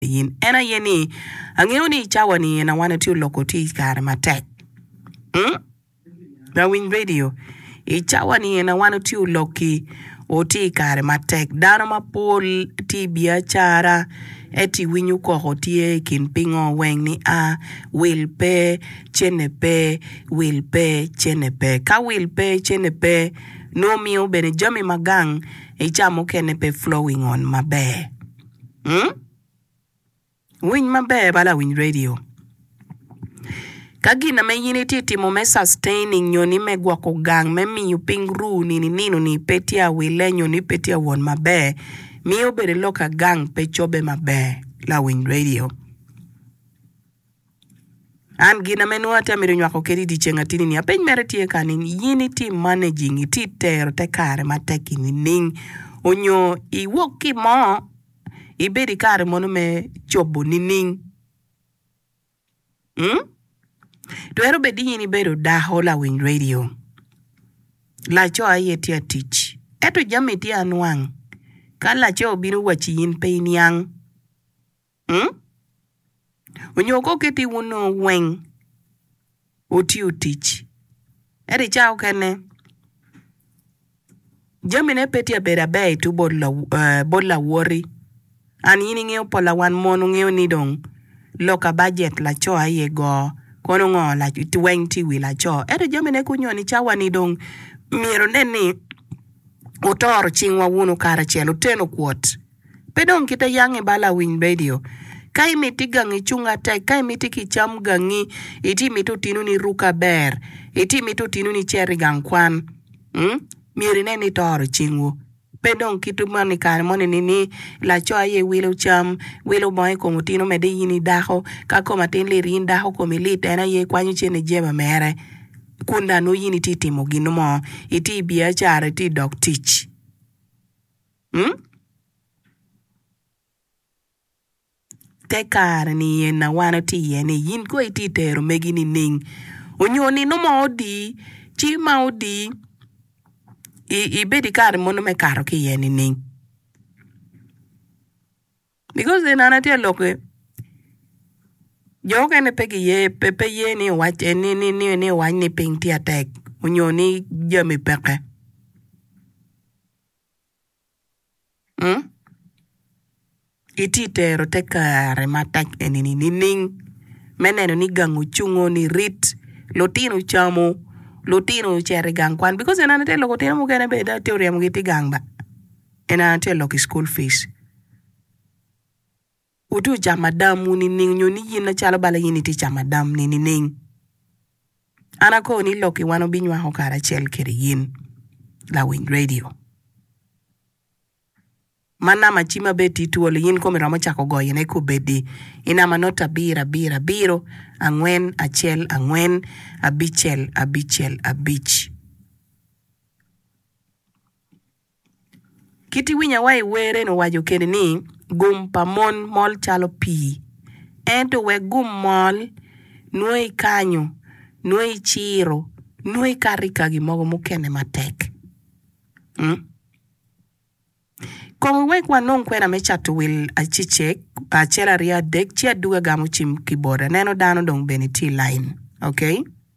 in en aye ni angeyo ni i cawa ni en awan atye oloko tye i kare matek lawiny radio i cawa ni en awan otye oloki otye i kare matek dano mapol tye i biacara ento i winyo koko tye i kin pingo weng ni a wil pe cene pe wil pe cene pe ka wil pe cene pe nongo miyo bene jami magang i cawa mukene pe flowing on maber. Winy maber bala awiny radio ka gin na me in i tye timo me sustaining nyo ni me gwoko gang me miyo ping ruu ni ni nino ni pe tye a wille nyo ni pe tye a won maber miyo bene lok a gang pe cobe maber la awiny radio. An gin ame nongo atye ka mito nywako kadi i dye ceng atini ni apeny mere tye kani in iti managing iti tero te kare matek i nining onyo iwok ki mo ibedo i kare mono me cobo nining mm twero bedo ni in ibedo dako lawiny radio laco aye tye ka tic ento jami tye anwang ka laco obino waci in pe iniang. Onyo kong kit ni wun onongo weng wutiyo tic. Ento i cawa mukene, jamine pe tye ka bedo aber i tubo bot lawoti. An in ingeyo pola wan mon wungeyo ni dong lok ka bajet laco aye go, kono ngo weng tye i wi laco. Ento jamine kunyo ni cawani dong myero wunen ni wutoro cingwa wunu karacel, wuteno kwot. Pe dong kite yangi ba lawiny redio. Ka imiti gangi cung atek, ka imiti ki cam gangi, iti miti otinu ni ruk aber, iti miti otinu ni cer i gang kwan, mm, myero inen ni itoro cingwu. Pe dong kit man i kare moni ni, ni laco aye wilo cam, wilo bongo i kom otinu mede in i dako. Ka kom atin lit in dako komi lit en aye kwanyo cene jeba mere. Kun dano in iti timo gin mo, iti biacara iti dok tic. Hmm? Te kare niye na wan watye iye ni yin kong itye ka tero megi nining? Onyo nino mo odi, ci ma odi i ibedo i kare mono me kato ki iye nining? Because then an atye ka lok ki jo mukene pe giye pe pe ye ni owac en ni ni ni ni owac ni piny tye atek onyo ni jami peke. Itye ka tero te kare matek eni nining me neno ni gang ocungo ni rit, lutino ocamu, lutino ocito i gang kwan? Bikos eni tye ka loko lutino mukene bene dong itye ka ryeyogi i gang ba, eni tye ka loko i cukul pic. Woti wu camo adam wu nining? Nyo ni yin acalo bala in itye camo adam ni nining? An akor ni lok i wan obinywako karacel kede yin lawiny radio. Ma nama ci ma bed ti twolo yin komi romo cako goyo ne kubedi i nama not abiro abiro abiro angwen acel angwen abicel abicel abic. Kit i winya wa i wer eni owaco kene ni gum pa mon mol calo pii ento wek gum mol nongo i kanyo nongo i ciro nongo i kato i ka gi mogo mukene matek kong i wek wanong kwena me cato wil acecek acel aryo adek ci aduga gamo cim ki bota aneno dano dong bene tye i lain ok.